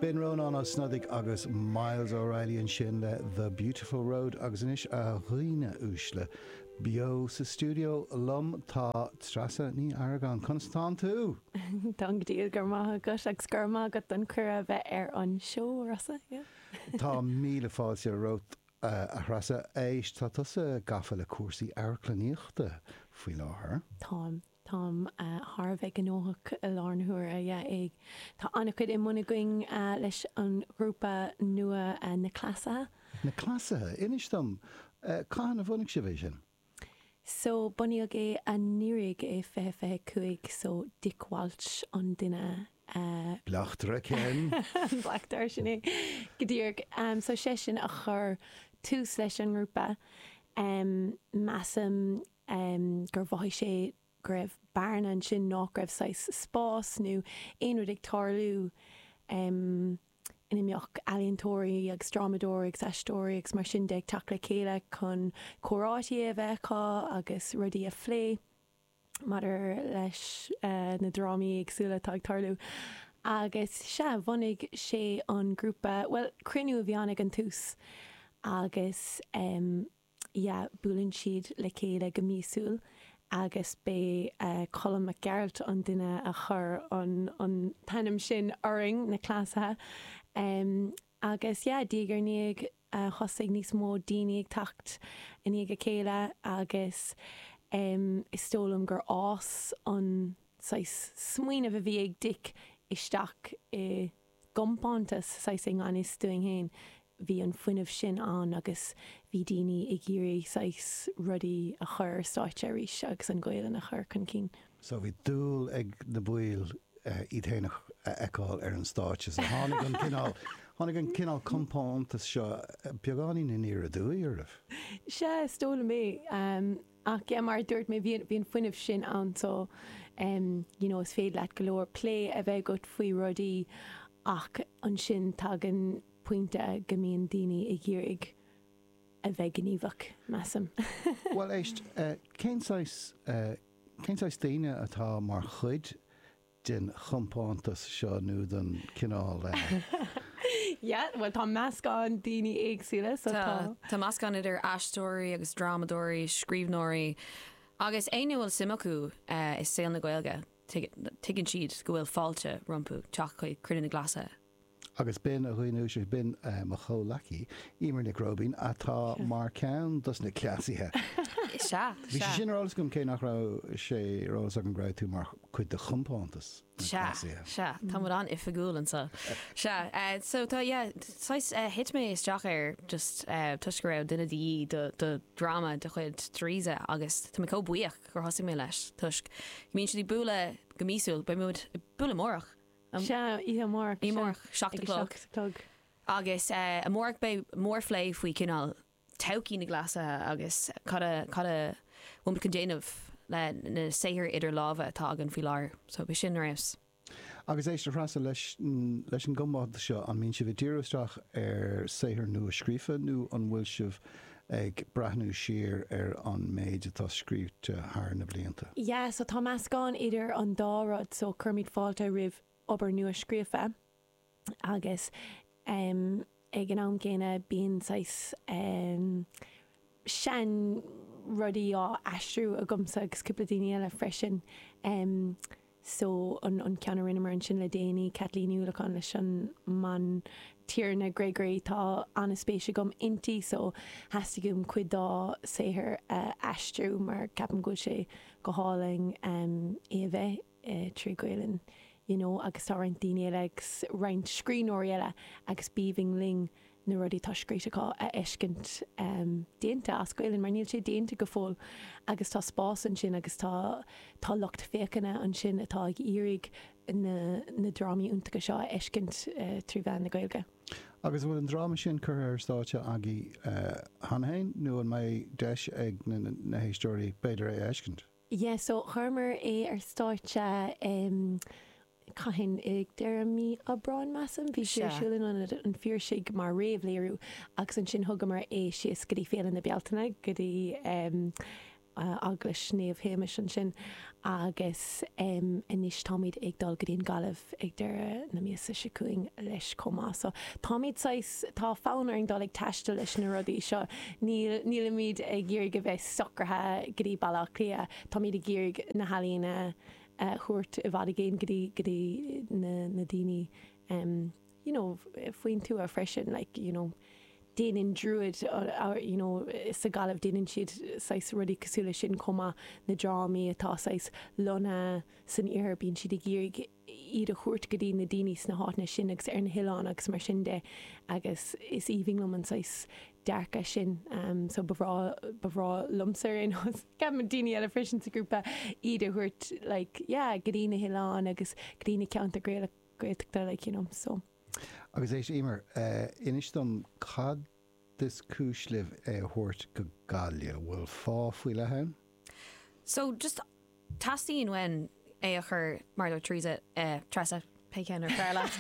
B'in Rónán Ó Snodaigh agus Myles O'Reilly ansin le The Beautiful Road agus anois, a dhaoine uaisle, beo sa stiúideo liom tá Treasa Ní Argáin. Conas atánn tú? Táim go diail, go raibh maith agat agus go raibh maith agat don cuireadh a bheith ar an seó. Tá míle fáilte romhat, a Threasa. Éist, tá tusa gafa le cúrsaí amharclannaíochta faoi láthair. Táim. Táim thar a bheith gnóthach i láthair na huaire, yeah. Tá an-chuid i mbun againn leis an ghrúpa nua Na Cleasaithe. Na Cleasaithe? Inis dom, cathain a bhunaigh sibh é sin? So, bunaíodh é anuiridh, 2025, so Dick Walsh an duine a. Bleachtaire, Ken. An bleachtaire, sin é, go díreach. So seisean a chuir tús leis an ngrúpa. Measaim gur mhothaigh sé go raibh bearna ansin, nách raibh saghas spás nó aon rud ag tarlú ina mbeadh ealaíontóirí agus drámadóirí agus aisteoirí agus mar sin de ag teacht le chéile chun comhráití a bheith acu agus rudaí a phlé maidir leis na drámaí éagsúla atá ag tarlú. Agus sea, bhunaigh sé an grúpa, bhuel, cruinniú a bhí ann ag an tús agus. yeah buaileann siad le chéile go míosúil agus b'é Colm Mac Gearailt an duine a chuir an an t-ainm sin orainn, na Cleasaithe, em agus yeah diaidh ar ndiaidh thosaigh níos mó daoine ag teacht i ndiaidh a chéile agus em is dóigh liom gur fhás an saghas smaoineamh a bhí ag Dick isteach i gcompántas, saghas i ngan fhios dúinn féin, bhí an fuinneamh sin ann agus bhí daoine ag iarraidh saghas rudaí a chur ar stáitse arís agus an Ghaolainn a chur chun cinn. So bhí dúil ag an bpobal iad féin a fheiceáil ar an stáitse. So tháinig an cineál, tháinig an cineál compántas seo beagáinín aniar aduaidh oraibh? Sea, is dóigh liom é. Ach mar a dúirt mé, bhí an fuinneamh sin ann so you know is féidir leat go leor plé a bheith agat faoi rudaí ach ansin tagann pointe go mbíonn daoine ag iarraidh a bheith gníomhach, measaim. Bhuel éist, cén saghas, cén saghas daoine atá mar chuid den chompántas seo nó den chineál a. Yeah, bhuel tá meascán daoine éagsúla sa tá. Tá meascán idir aisteoirí agus drámadóirí, scríbhneoirí agus éinne a bhfuil suim acu i saol na Gaeilge, tuigeann siad go bhfuil fáilte rompu teacht chuig cruinniú na gCleasaithe. agus b'in an chaoi ansan, b'in mo chomhleacaí, Emer Nic Róibín, atá mar ceann dos na cleasaithe. Sea, sea. Bhí sé sin ar eolas agam, cé nach raibh sé ar eolas agam go raibh tú mar chuid de chompántas na gcleasaithe. Sea, sea. Tá muid an-oifigiúil anseo. Sea, so tá, yeah, saghas, thit mé isteach air just toisc go raibh duine de dhíth do, do dhráma de chuid Theresa agus tá mé comh buíoch gur thosaigh mé leis toisc go mbíonn siad ag bualadh go míosúil, beidh muid ag bualadh amárach. Sea, oíche amárach. Oíche amárach, seacht a chlog. Seacht a chlog. Agus amárach beidh mórphlé faoi cineál todhchaí na gcleasaithe agus cad a cad a bhfuilimid chun déanamh le na saothair idir lámha atá againn faoi láthair. So b'shin a raibh. Agus éist, a Threasa, leis an gcompántas seo, an mbíonn sibh ag díriú isteach ar saothair nua scríofa nó an bhfuil sibh Ag breathnú siar ar an méid atá scríofa thar na blianta. Yeah so tá meascán idir an dá rud so cuirimid fáilte roimh obair nua-scríofa agus em ag an am gcéanna bíonn saghas em sean rudaí á aistriú agamsa agus cúpla daoine eile freisin em. so an an ceann a rinneamar ansin le déanaí, Caitlín Ní Uallacháin leis an mBantiarna Gregory, tá an-spéis agam inti so theastaigh uaim cuid dá saothar a aistriú mar ceapaim go bhfuil sé go hálainn é a bheith trí Ghaelainn you know agus tá roinnt daoine eile agus roinnt scríbhneoirí eile agus b'aoibhinn linn na rudaí atá scríte acu a fheiscint déanta as Gaelainn, mar níl sé déanta go fóill agus tá spás ansin agus tá tá lucht féachana ansin atá ag iarraidh na na drámaí iontacha seo a fheiscint trí mheán na Gaeilge. Agus an bhfuil an dráma sin curtha ar stáitse agaibh cheana fhéin nó an mbeidh deis ag na na héisteoirí b'fhéidir é a fheiscint? Yeah so chuireamar é ar stáitse em cathain ag deireadh mí Aibreáin measaim bhí sé ar siúl in ionad an Phiarsaigh mar réamhléiriú agus ansin thugamar é síos go dtí Féile na Bealtaine go dtí em Eaglais Naomh Shéamais ansin agus em anois táimid ag dul go dtí an Ghaillimh ag deireadh na míosa seo chugainn leis chomh maith so táimid saghas tá fonn orainn dul ag taisteal leis na rudaí seo níl nílimid ag iarraidh a bheith socraithe go dtí Baile Átha Cliath. Táimid ag iarraidh na healaíona a thabhairt i bhfad i gcéin go dtí, go dtí na daoine you know faoin tuath freisin like you know déanann Druid you know sa Ghaillimh déanann siad saghas rudaí cosúil leis sin chomh maith, na drámaí atá saghas lonnaithe san iarthar bíonn siad ag iarraidh, iad a thabhairt go dtí na daoine sna háiteanna sin agus ar na hoileáin agus mar sin de agus is aoibhinn liom an saghas dearcadh sin so ba bhreá, ba bhreá liomsa ar aon nós, ceapaim daoine eile freisin sa ghrúpa, iad a thabhairt like yeah go dtí na hoileáin agus go dtí na ceantair Gaeltachta like you know so. Agus éist, Eimear, inis dom, cad Is cúis libh é a thabhairt go Gaillimh. Bhfuil fáth faoi leith ann? So, just teastaíonn uainn é a chur, mar a dúirt Teresa, eh, Treasa, pé ceann ab fhearr leat,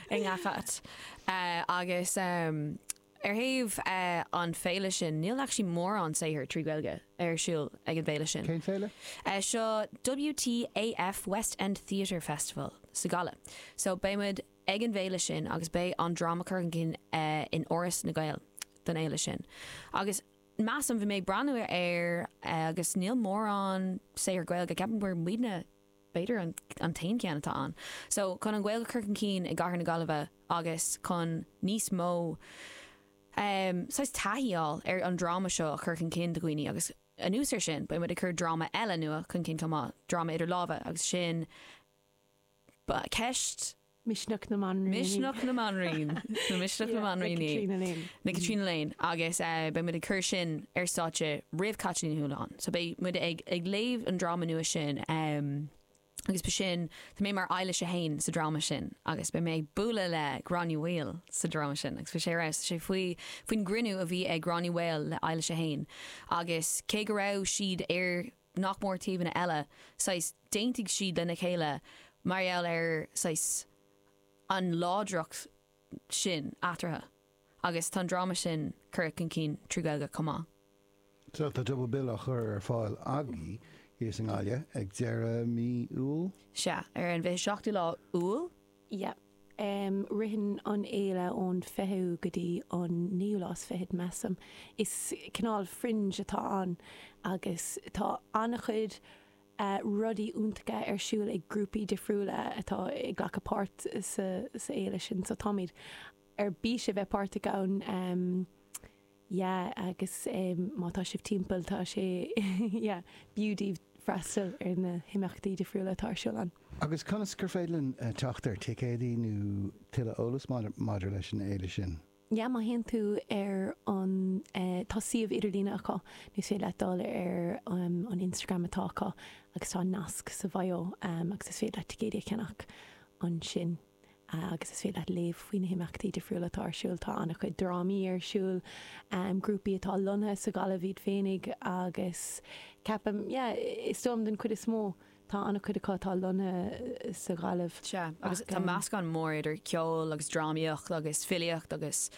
i ngach áit. Eh, agus, em, ar thaobh, eh, an féile sin, níl actually mórán saothair trí Ghaeilge ar siúl ag an bhféile sin. Cén féile? Eh, seo WTAF West End Theatre Festival sa Ghaillimh. So, beidh muid ag an bhféile sin agus beidh an dráma curtha chun cinn in Áras na nGael don fhéile sin agus measaim, bhí mé ag breathnú air agus níl mórán saothar Gaeilge, ceapaim gur muidne b'fhéidir an t-aon cheann atá ann. So chun an Ghaeilge a chur chun cinn i gcathair na Gaillimhe agus chun níos mó ehm saghas taithí a fháil ar an dráma seo a chur chun cinn do dhaoine agus anuas ar sin beidh muid ag cur dráma eile nua chun cinn chomh maith, dráma idir lámha agus sin, Ba ceist. Misneach na mBanríon. Misneach na mBanríon. Nó Misneach na mBanríonaí le Tríona Léin. Agus beidh muid ag cur sin ar stáitse roimh Caitlín Ní Chualáin. So beidh muid ag léamh an dráma nua sin. Agus beidh sin, tá mé mar Eilís 1 sa dráma sin agus beidh mé ag bualadh le Gráinne Mhaol sa dráma sin agus beidh sé ar fheabhas. Tá sé faoi, faoin gcruinniú a bhí ag Gráinne Mhaol le Eilís 1 agus cé go raibh siad ar, nach mór taobhanna eile, saghas, d'aontaigh siad lena chéile mar gheall ar, saghas, an láidreacht sin eatarthu agus tá an dráma sin curtha chun cinn trí Ghaeilge chomh maith. So tá Double Bill á chur ar fáil agaibh thíos i nGaillimh ag deireadh mí Iúil? Sea, ar an bhfiche seachtú lá Iúil. Yep. Ritheann an fhéile ón 20ú go dtí an 9ú lá is fiche, measaim. Is cineál fringe atá ann agus tá an-chuid rudaí iontacha ar siúl ag grúpaí difriúla atá ag glacadh páirt sa fhéile sin so táimid ar bís a bheith páirteach ann. yeah agus má tá sibh timpeall tá sé yeah b'fhiú daoibh freastal ar na himeachtaí difriúla atá ar siúl ann. Agus conas gur féidir linn teacht ar thicéadaí nó tuilleadh eolas maidir leis an fhéile sin? Yeah má théann tú ar an tá suíomh idirlíne acu nó is féidir leat dul ar an Instagram atá acu agus tá nasc sa bhio agus is féidir leat ticéadaí a cheannach ansin. agus is féidir leat léamh faoi na himeachtaí difriúla atá ar siúl. Tá an-chuid drámaí ar siúl, grúpaí atá lonnaithe sa Ghaillimh iad féinig agus ceapaim, yeah, is dóigh liom den chuid is mó, tá an-chuid acu atá lonnaithe sa Ghaillimh. Sea, agus tá meascán mór idir ceol agus drámaíocht agus filíocht agus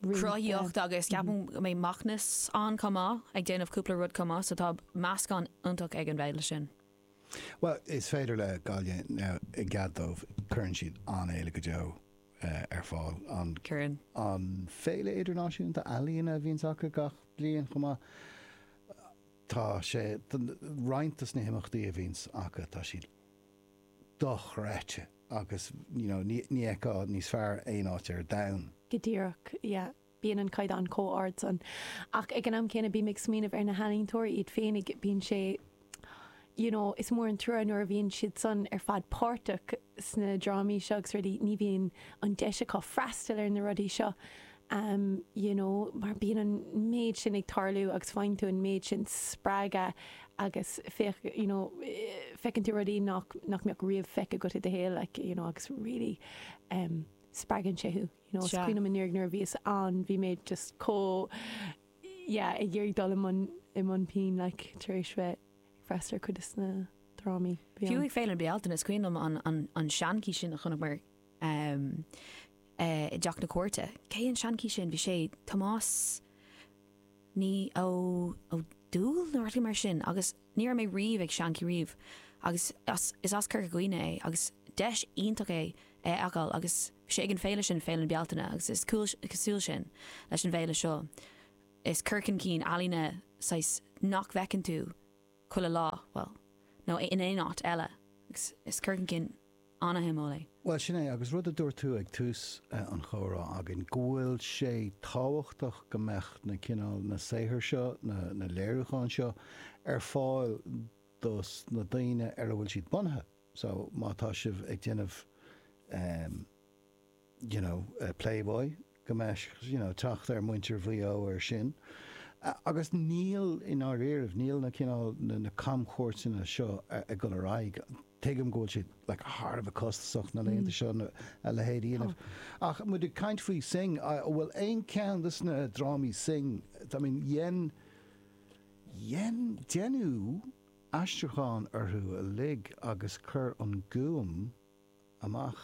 cruthaíocht agus ceapaim go mbeidh Macnas ann chomh maith ag déanamh cúpla rud chomh maith, so tá meascán iontach ag an bhféile sin. Bhuel, to be fair le Gaillimh ná i gcead dóibh cuireann siad an-fhéile go deo ar fáil. An. Cuireann. An Fhéile Idirnáisiúnta Ealaíon a bhíonns acu gach bliain chomh maith. Tá sé roinnt dos na himeachtaí a bhíonns acu tá siad dochreidte agus you know ní fheicfeá níos fearr aon áit ar domhan. Go díreach, yeah. bíonn an caighdeán chomh ard san. Ach ag an am céanna bím ag smaoineamh ar na healaíontóirí iad féinig, bíonn sé you know is mór an trua nuair a bhíonn siad san ar fad páirteach sna drámaí seo agus rudaí, ní bhíonn an deis acu freastal ar na rudaí seo em you know mar bíonn an méid sin ag tarlú agus faigheann tú an méid sin spreagadh agus feic you know feiceann tú rudaí nach nach mbeadh riamh feicthe agat i do shaol like you know agus really em spreagann sé thú. Is cuimhin liom nuair a bhíos ann, bhí mé just chomh, yeah, ag iarraidh dul i mbun pinn, like, tar éis bheith ag freastal ar chuid des na drámaí. Fiú ag Féile na Bealtaine, is cuimhin liom an seanchaí sin a chonaiceamar i dTeach na Cúirte. Cé an seanchaí sin? Bhí sé, Tomás, ní ó ó Dúill nó rud mar sin agus ní raibh mé riamh ag seanchaí riamh agus as is as Corca Dhuibhne é agus deis iontach é é a fheiceáil agus bhí sé ag an féile sin Féile na Bealtaine agus is cosúil sin leis an bhféile seo is cur chun cinn ealaíne saghas nach bhfeiceann tú chuile lá, bhuel, nó in aon áit eile, agus is cur chun cinn an-shuimiúil é. Bhuel, sin é, agus rud a dúirt tú ag tús an chomhrá againn, go bhfuil sé tábhachtach go mbeadh na cineál, na saothair seo, na léiriúcháin seo, ar fáil dos na daoine ar a bhfuil siad bunaithe. So, má tá sibh ag déanamh, em, you know, Playboy go mbeadh, you know, teacht ag muintir Mhaigh Eo ar sin. Agus níl, i ndáiríribh, níl na cineál, na camchuairteanna seo ag dul ar aghaidh. Tuigim go bhfuil siad, like, thar a bheith costasach na laethanta seo a leithéid a dhéanamh. Ach muid ag caint faoi Synge, an bhfuil aon cheann des na drámaí Synge, I mean, dhein, dhein, deineadh aistriúcháin orthu uilig agus chuir an Gúm amach,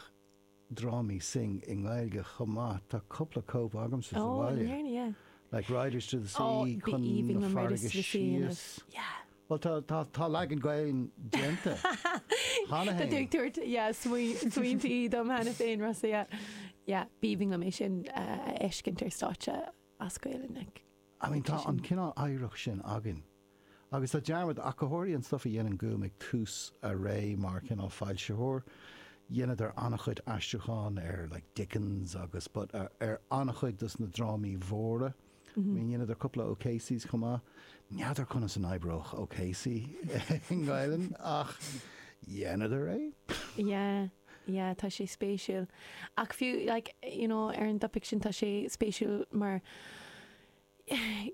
drámaí Synge i nGaeilge chomh maith, tá cúpla cóip agamsa sa bhaile, Like Riders to the Sea, Chun na Farraige Síos, bhuel tá, tá leagan Gaelainn déanta cheana féin. Tá tú ag tabhairt, yeah, smaointí dom cheana féin, Rossa, yeah, yeah, b'aoibhinn liom é sin a fheiscint ar stáitse as Gaelainn, like. I mean, tá an cineál oidhreacht sin againn. Agus tá dearmad againn ar an stuif a dhein An Gúm ag tús a ré mar chineál foilsitheoir. Dheineadar an-chuid aistriúcháin ar like Dickens agus but ar an-chuid dos na drámaí mhóra. I mean dheineadar cúpla O'Caseys chomh maith. N'fheadar conas a oibreodh O'Casey i nGaelainn ach dheineadar é. Yeah, yeah, tá sé spéisiúil. Ach fiú like, you know, ar an dtopaic sin tá sé spéisiúil mar,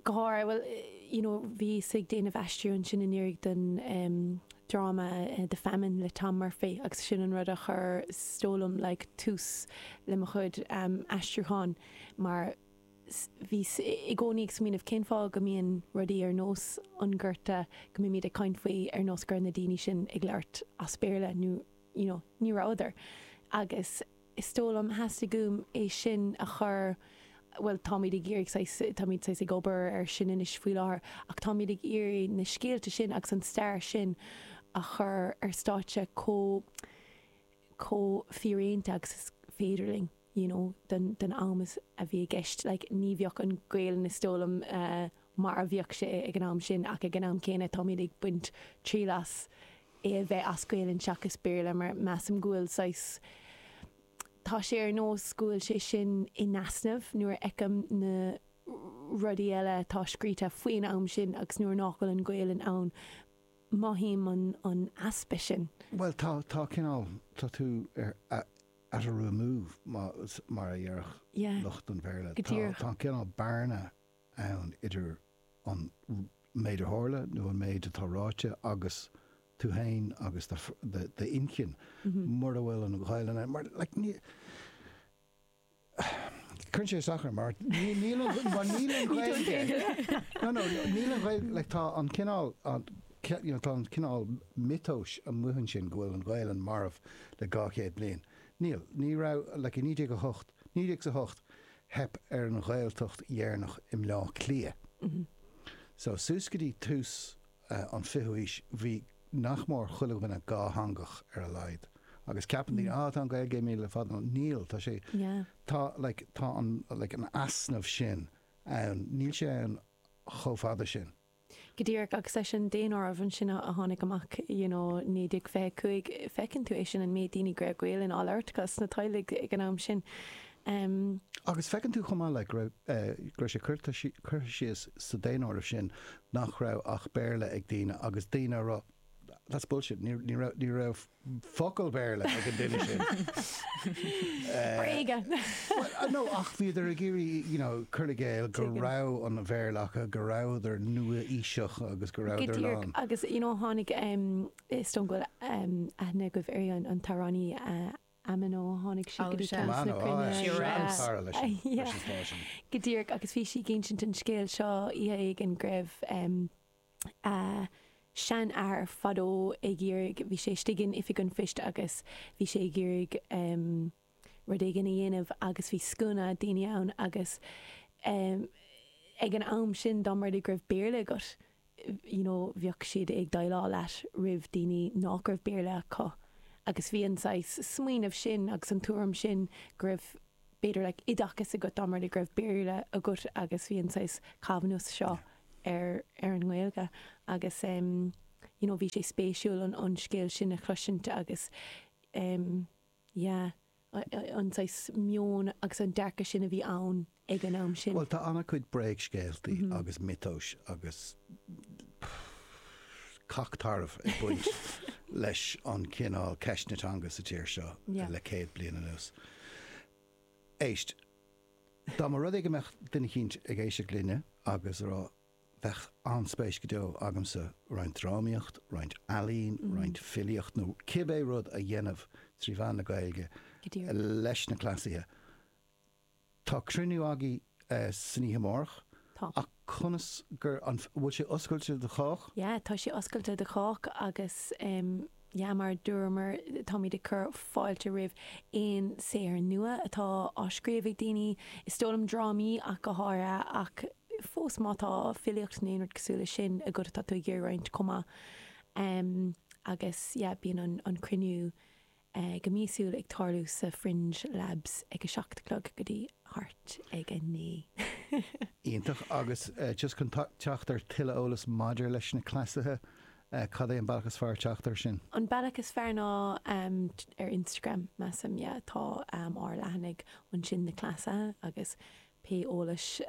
go háirithe, bhuel, you know, bhíos ag déanamh aistriú ansin anuraidh don dráma The Famine le Tom Murphy agus sin an rud a chuir is dóigh liom, like, tús le mo chuid aistriúchán mar bhíos i gcónaí ag smaoineamh cén fáth go mbíonn rudaí ar nós an Gorta, go mbímid ag caint faoi ar nós go raibh na daoine sin ag labhairt as Béarla nó, you know, ní rabhadar agus, is dóigh liom, theastaigh uaim é sin a chur, bhuel, táimid ag iarraidh saghas, táimid saghas ag obair air sin anois faoi láthair, ach táimid ag iarraidh na scéalta sin agus an stair sin a chur ar stáitse chomh, chomh fíréanta agus is féidir linn, you know, don, don am is, a bhí i gceist. Like, ní bheidh an Ghaelainn, is dóigh liom, mar a bhíodh sé ag an am sin ach ag an am céanna táimid ag baint triail as, é a bheith as Gaelainn seachas Béarla mar measaim go bhfuil saghas, tá sé ar nós go bhfuil sé sin in easnamh nuair a fheicim na rudaí eile atá scríte faoin am sin agus nuair nach bhfuil an Ghaelainn ann, mothaím an easpa sin. Bhuel, tá, tá cineál, tá tú ar, at a remove mar a dhéarfadh lucht an Bhéarla, tá an cineál bearna ann idir an méid a tharla nó an méid atá ráite agus tú féin agus d'inchinn mura bhfuil an Ghaelainn ann. Mar cuireann sé isteach orm mar níl an Ghaeilge, tá an cineál tá an cineál miotais amuigh ansin go bhfuil an Ghaelainn marbh le 200 bliain. Níl, ní raibh, like i 1908, 1908, Theip ar an Ghaeltacht dheireanach i mBleá Cliath. So, suas go dtí tús an fichiú haois, bhí nach mór chuile dhuine dhátheangach, ar a laghad. Agus ceapann daoine, ah, tá an Ghaeilge imithe le fada. No, níl. Tá sé, tá, like, tá an, like, an easnamh sin ann. Níl sé ann chomh fada sin. Go díreach, agus leis an daonáireamh ansin a tháinig amach, you know, 1925, feiceann tú é sin, an méid daoine go raibh Gaelainn á labhairt acu sna teaghlaigh ag an am sin. em. Agus feiceann tú chomh maith, like, go raibh, eh, go raibh sé curtha, curtha síos sa daonáireamh sin nach raibh ach Béarla ag daoine agus daoine ag rá, that's bullshit, ní, ní raibh, ní raibh, focal Béarla ag an duine sin. Bréaga! Bhuel, no, ach bhíodar ag iarraidh, you know, cur i gcéill go raibh an Bhéarla acu, go rabhadar nua-aoiseach agus go rabhadar lán. Agus, you know, tháinig, is dóigh go bhfuil aithne agaibh ar an t-amhránaí Amano, tháinig sí go dtí ceann de na cruinnithe. Amano, ah, seanchara leis an, leis an stáisiún. Go díreach, agus bhí sí ag insint an scéil seo oíche éigin go raibh, a seanathair fadó ag iarraidh, bhí sé istigh in Oifig an Phoist agus bhí sé ag iarraidh rud éigin a dhéanamh agus bhí scuaine daoine ann agus ag an am sin dá mba rud é go raibh Béarla agat, you know, bheadh siad ag déileáil leat roimh daoine nach raibh Béarla acu agus bhí an saghas smaoineamh sin agus an tuairim sin go raibh b'fhéidir, like, oideachas agat dá mba rud é go raibh Béarla agat agus bhí an saghas coimhneas seo ar ar an nGaeilge agus em you know bhí sé spéisiúil an an scéal sin a chloisint agus em yeah an saghas meon agus an dearcadh sin a bhí ann ag an am sin. Bhuel tá ana-chuid bréagscéaltaí agus miotais agus cac tarbh ag baint leis an chineál ceisteanna teanga sa tír seo le céad bliain anuas. Éist, dá mba rud é go mbeadh duine eicínt ag éisteacht linne agus a rá, bheadh an-spéis go deo agamsa roinnt drámaíocht, roinnt ealaín, roinnt filíocht nó cibé rud a dhéanamh trí mheán na Gaeilge leis na cleasaithe. Tá cruinniú agaibh san oíche amárach. Tá. Ach conas gur, an bhfuil sé oscailte do chách? Yeah, tá sé oscailte do chách agus yeah mar a dúramar, táimid ag cur fáilte roimh aon saothar nua atá á scríobh ag daoine, is dóigh liom drámaí ach go háirithe ach fós má tá filíocht nó aon rud cosúil leis sin agat atá tú ag iarraidh roinnt chomh maith. Agus yeah bíonn an cruinniú go míosúil ag tarlú sa Fringe Labs ag a seacht a chlog go dtí thart ag a naoi. Iontach. Agus just chun teacht ar tuilleadh eolas maidir leis na cleasaithe, cad é an bealach is fearr teacht air sin? An bealach is fearr ná ar Instagram, measaim, yeah. Tá ár leathanaigh ansin, na cleasaithe, agus pé eolas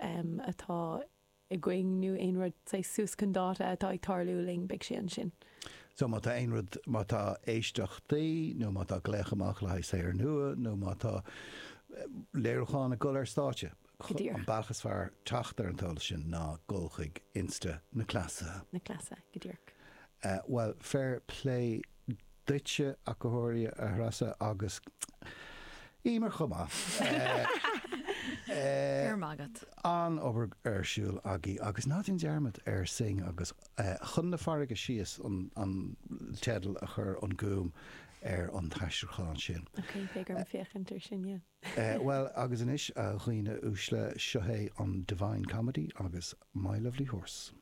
atá. i gcónaí nó aon rud saghas suas chun dáta atá ag tarlú linn, beidh sé ansin. So má tá aon rud, má tá éisteachtaí nó má tá glaoch amach le haghaidh saothar nua nó má tá léiriúcháin ag dul ar stáitse, Go díreach. an bealach is fearr teacht ar an eolas sin ná dul chuig Insta na Cleasa. na Cleasa, go díreach. Bhuel, fair play. duitse, a chomhairle, a Threasa, agus Eimear chomh maith. Go raibh maith agat. An-obair ar siúl agaibh agus ná déan dearmad ar Synge agus Chun na Farraige Síos an teideal a chuir An Gúm ar an t-aistriúchán sin. Ok, beidh orm féachaint ar sin, yeah. Bhuel, agus anois, a dhaoine uaisle, seo é an Divine Comedy agus My Lovely Horse.